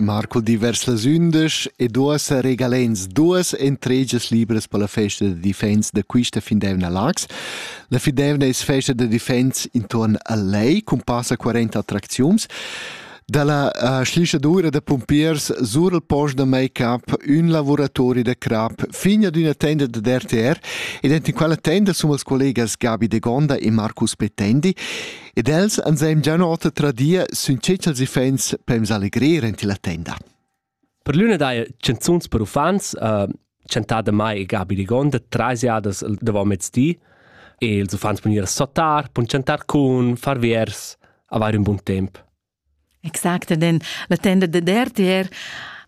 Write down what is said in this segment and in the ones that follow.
Marcul di vers las undisch ed uossa regalens duas entregias libras per la festa da defense da quista findevna Lax. La findevna es festa da defense intorn a Lei cun passa 40 attracziuns. Da la uh, schlischadura da pumpiers sur il post da make-up, ün lavoratori da crap, fin ad üna tenda da DRTR ed enten quella tenda sun els collegas Gabi de Gonda e Marcus Petendi Ed els ansem già ota tradir sün tschels iffaints per ins allegrir enti la tenda. Per l'üna daja chanzuns per uffants, uh, chantada mai e Gabi Rigonda, trasiadas davant mezdi, e ils uffants pon ir a sotar, pon chantar cun, far viers, avair un bun temp. Exact den la tenda de dertier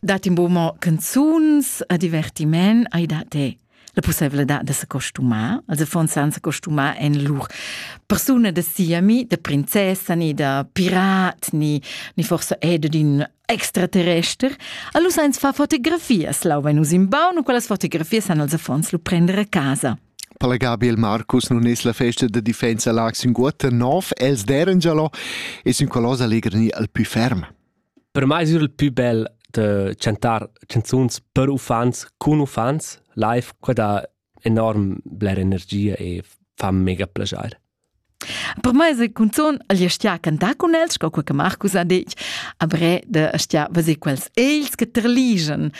dat in buca mo canzuns a divertiment ai da te la possibilità da se costumar, also von san se costumar en lur persuna da siami, da princessa, ni da pirat, ni, ni forse è d'un extraterrester. Allora sainz fa fotografias, lau venus in baun, quelles fotografias han als affons lu prendere a casa. Per la Gabriel Marcus nun es la festa da difensa Lag Sünguotta nov, els deren già lo e sun coloss allegr gnir al pü ferm. Per mai es il pü bel da chantar canzuns per uffants cun uffants live, qua dà enorm bler energia e fa mega plaschair. Per mai se cunzun el stia cantar cun els, sco quei che Marcus ha detg, a bre de stia veser quels els che terligen,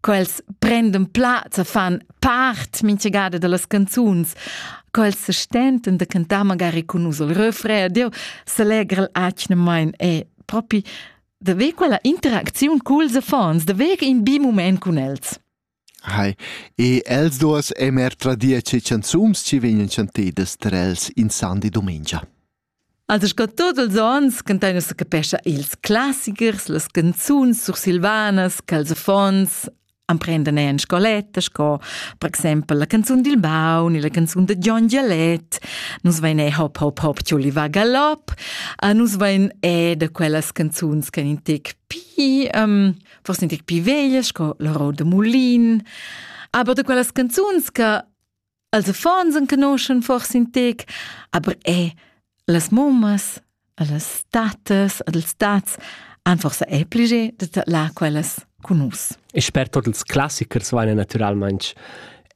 quels prenden plaz e fan part mintgada dellas canzuns, quels se stenten de cantar magari cun us il refrain, deu s'allegra atgnamain e propi de ver quella interacziun culs affons, de ver in bi moment cun els. Hai. E els duos emer er tradir che chanzuns chi vegnan chantedas ter els in sandi dumengia. Also sco tot els ons cantain nus capescha ils classichers, las canzuns sursilvanas ch'els affons emprendan en scoletta sco per exempel la canzun dil baun e la canzun da Gion Gialet. Nus vein e hop hop hop Giulli va galop. A nus vein e da quellas canzuns che in tec pi um, Forse in tic più veglia, sco l'orror de mulin, aber de quellas canzuns che als affons en conoscen forse in tec, aber è las mommas, las tatas, els tats han forse è plege de là quellas con nus. E sper tot ils classichers vaina naturalmente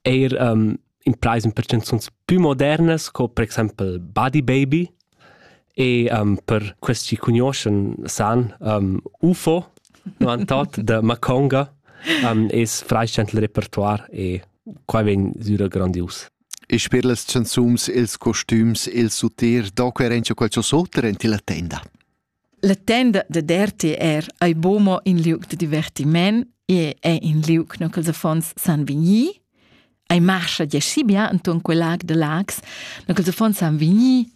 eir um, impraise per canzuns pü modernas co per exaimpel Buddy Baby e um, per quels chi cugnuoschan san um, UFO novantot da Maconga um, es freischend il repertoire e qua vegn süra grandius. E sper las canzuns, ils costüms, il suter, do quer encha qualche sotter en tilla tenda? La tenda da RTR ei buca in liug da divertiment e è in liug no ch'ils affons san vegnir. Ei marscha gie bia enton quel lag de Lags, no ch'ils affons san vegnir.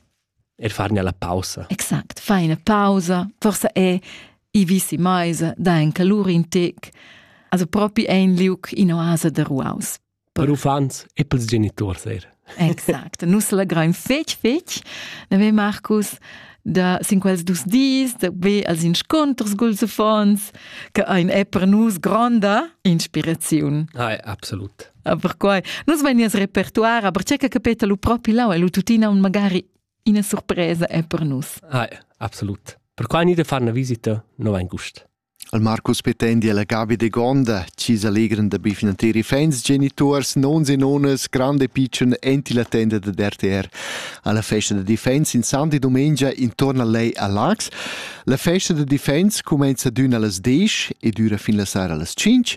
Er far la pausa. Exakt, fai una pausa. Forse è i visi maisa, da en calur in tec. Also propi è in liug in oasa de ruaus. per uffants e pels geniturs er. Exact. Nus legraim fetg, fetg. Neve Marcus da sin quels dus dis da be als insconters culs affons che ein è per nus gronda inspiraziun. Ah, absolut. Per quai nus vein nies repertoire, aber c'è che capeta lu propi lau e lu tuttina un magari ina surpresa è per nus. Ah, absolut. Per quai ni de far una visita no vain gust. Il Marcus pretendi alla Gabi Degonda, chi s'allegran da be finanter i fans genituors, nons e nonas, grand e pitschen, enti la tenda da RTR. Alla festa da defense in santi domengia intorno a lei a Lax. La festa da defense comenza d'ün allas 10 e dura fin la sera allas 5